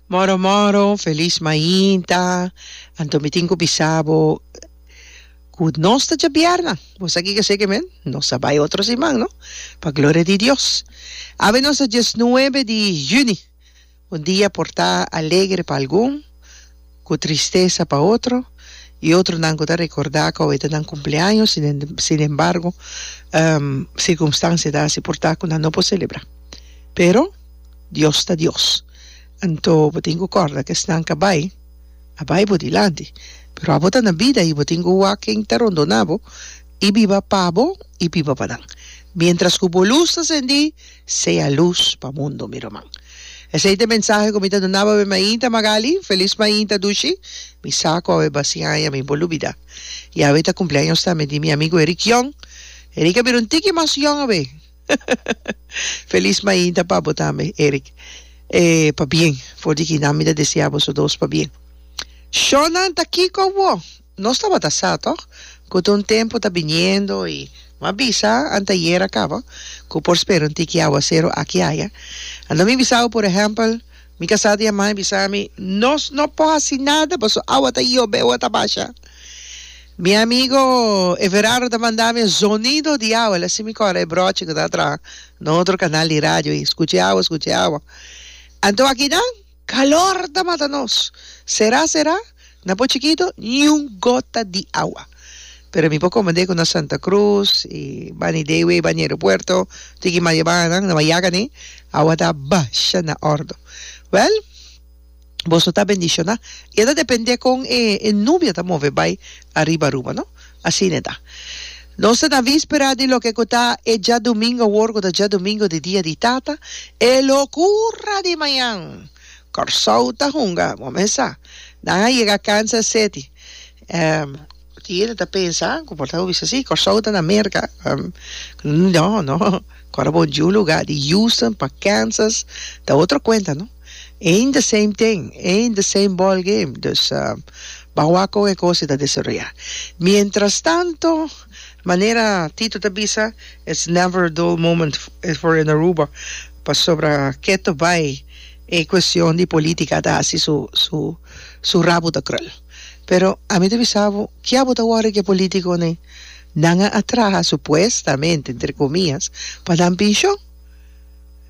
Moro moro, feliz mainta. Anto mi tin cu bisa bo cu nos ta dja bierna. Bo sa kico seke men? Nos a bay otro siman, no? Pa gloria di Dios. Awe nos ta diesnuebe di juni. Un dia por ta alegre pa algun. Ku tristesa pa otro, i otronan ku ta rekordá ku awor ta nan kumpleaño, sinembargo, sirkumstansia ta hasi por ta ku nan no por selebrá. Pero, Dios ta Dios, anto bo tin ku kòrda ku esnan ka bai a bai bo dilanti, pero abo ta na bida i bo tin ku wak ken ta rondoná bo i biba pa bo i biba pa nan, miéntras ku bo lus ta sendí. Sea luz pa mundo mi ruman. Esei ta e mensahe ku mi ta duna pa mi mainta Magali, felis mainta Dushi, mi sa ku awe basi aña mi por lubida. I awe ta kumpleaños tambe di mi amigu Eric Young, Eric a bira un tiki mas yong awe. Felis mainta pa bo tambe Eric, e pa bien for di kinan mi ta desea boso dos pa bien. Shownan ta kiko bo? Nos tabata sa tòg ku ta un tempu ta biniendo i m'a bisa anteayer a kaba ku por spera un tiki áwaseru aki i aya. Anto mi bisau, por ehèmpel, mi kasá di Amai bisa mi, Nos no por hasi nada paso awa ta yobe o a ta basha. Mi amigo Everardo ta manda mi e zonido di awa, el a si mi kòrda e bròchi ku ta traha na otro kanal di radio i skucha e awa, skucha e awa. Anto aki nan? Calor ta mata nos. Será será? Na por chikito ni un gota di awa. Pero mi por comende cu na Santa Cruz y bani de ewey bani aeropuerto tiki maya banan na bayaga ne awa ta basha na ordo. Wel, boso ta bendiciona y a ta depende con e nubia ta move bay ariba Aruba no. Asina ta. Nos ta na víspera di loke ku ta e djadumingu awor ku ta djadumingu di Dia di Tata, e lokura di mañan. Kòrsou ta hunga kumesa. Nan a yega Kansas Seti. Tin yende ta pensa ku por ta hopi bisti si Kòrsou ta na Merka. No, no. Kòrda bo djunlugá di Houston pa Kansas ta otro kuenta, no. Eén the same thing, eén the same ball game, dus ba wak kon e kos e ta desaroyá. Mientras tanto, manera Tito ta bisa, it's never a dull moment for in Aruba, pasobra keto bai e cuestion di politica ta haci su su su rabo ta krul. Pero ami ta bisa bo, kia bo ta worry cu e politiconan? Nan a a traha supuestamente, entre comillas, pa nan pension.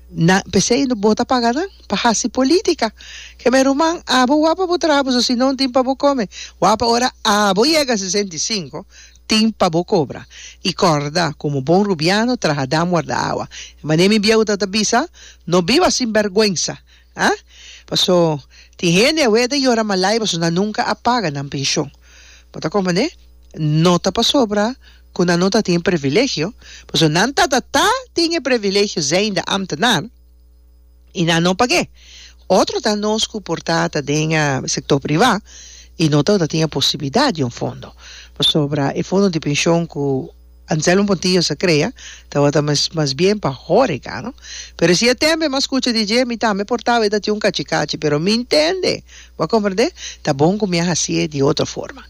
Nan, p'esei no bo ta paga nan pa hasi politica. Ke me ruman, abo wak pa bo traha boso si non tin pa bo come. Wak pa ora abo yega sesenta i sinku tin pa bo cobra. I corda, como bon rubiano, traha dam warda awa. E manera mi bieuda ta bisa, No biba sinberguensa, Ha? Paso, tin hende awe a ta yora malai paso nan nunca a paga nan pension. Bo ta comprende? No ta pasobra cu nan no ta tin e privilegio, paso nan tatata tin e privilegio zijnde ambtenaar y nan no pag'e. Otro ta nos cu por ta ta den e sector priva y no ta tin e posibilidad di un fondo, pasobra e fondo di pension cu. Anselmo Montijo sa crea tabata mes mas bien pa horeca no. Pero si e tembe mas cucha di dje mi tambe por taba e ta tin un cachi cachi pero mi intende bo a comprende ta bon cu mi a hacie di otro forma.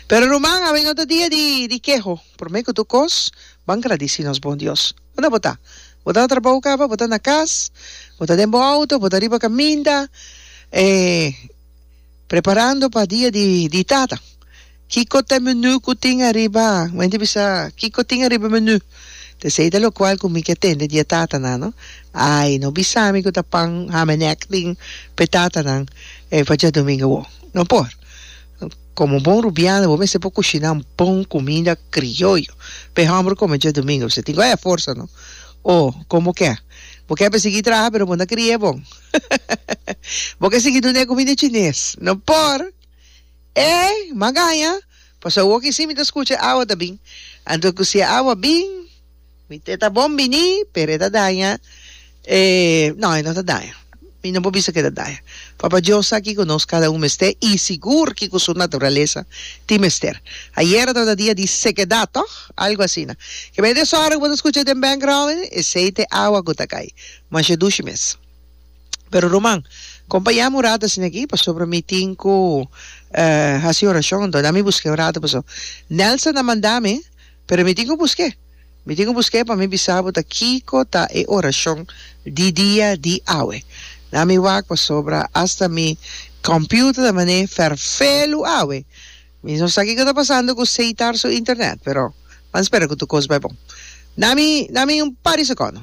Pero ruman awe no ta dia di di keho prome cu tur cos ban gradici nos bon Dios. Unda bo ta? Bo ta na trabou caba? Bo ta na cas? Bo ta den bo auto? Bo ta riba caminda? E. Preparando pa dia di di tata. Kiko ta menu ku tin ariba? Mi ta bisa kiko tin ariba menu? Ta esei ta lokual ku mi ke tende dia tata nan no. Ai no bisa mi ku ta pan hamenek tin p'e tata nan pa djadumingu awor. No por. Komo bon rubiano bo mester por kushiná un bon kuminda krioyo p'e hòmber kome djadumingu. Tin ku haya forsa no. O komo ke? Bo ke pa sigui traha pero bo no ta krie bon. Bo ke sigui dun'é kumida chines? No por! Ey, magaña! Paso awor ki sí mi ta skucha awa ta bin. Anto ku si e awa bin, mi te ta bon biní, pero e ta daña. E, no, e no ta daña. Mi no por bisa ku e ta daña. Papa Dios sa kiko nos kada un mester i sigur kiko su naturalesa tin mester. Ayera tabata dia di sekedat, tòg? Algu asina. Kib'ey desòrgo ku bo ta skucha den background, esei ta e awa ku ta kai. Masha dushi mes. Pero ruman, con pa yami un rato asina aki, pasobra mi tin cu haci oracion, anto dami busqué un rato, paso Nelson a manda mi, pero mi tin cu busqué, mi tin cu busqué pa mi bisa bo ta kico ta e oracion di dia di awe. Dami wak, pasobra hasta mi computer ta man'é ferfé lu awe. Mi no sa kico ta pasando cu Seitar su internet, pero, pan spera cu tur cos bai bon. Dami, dami un par di secondo.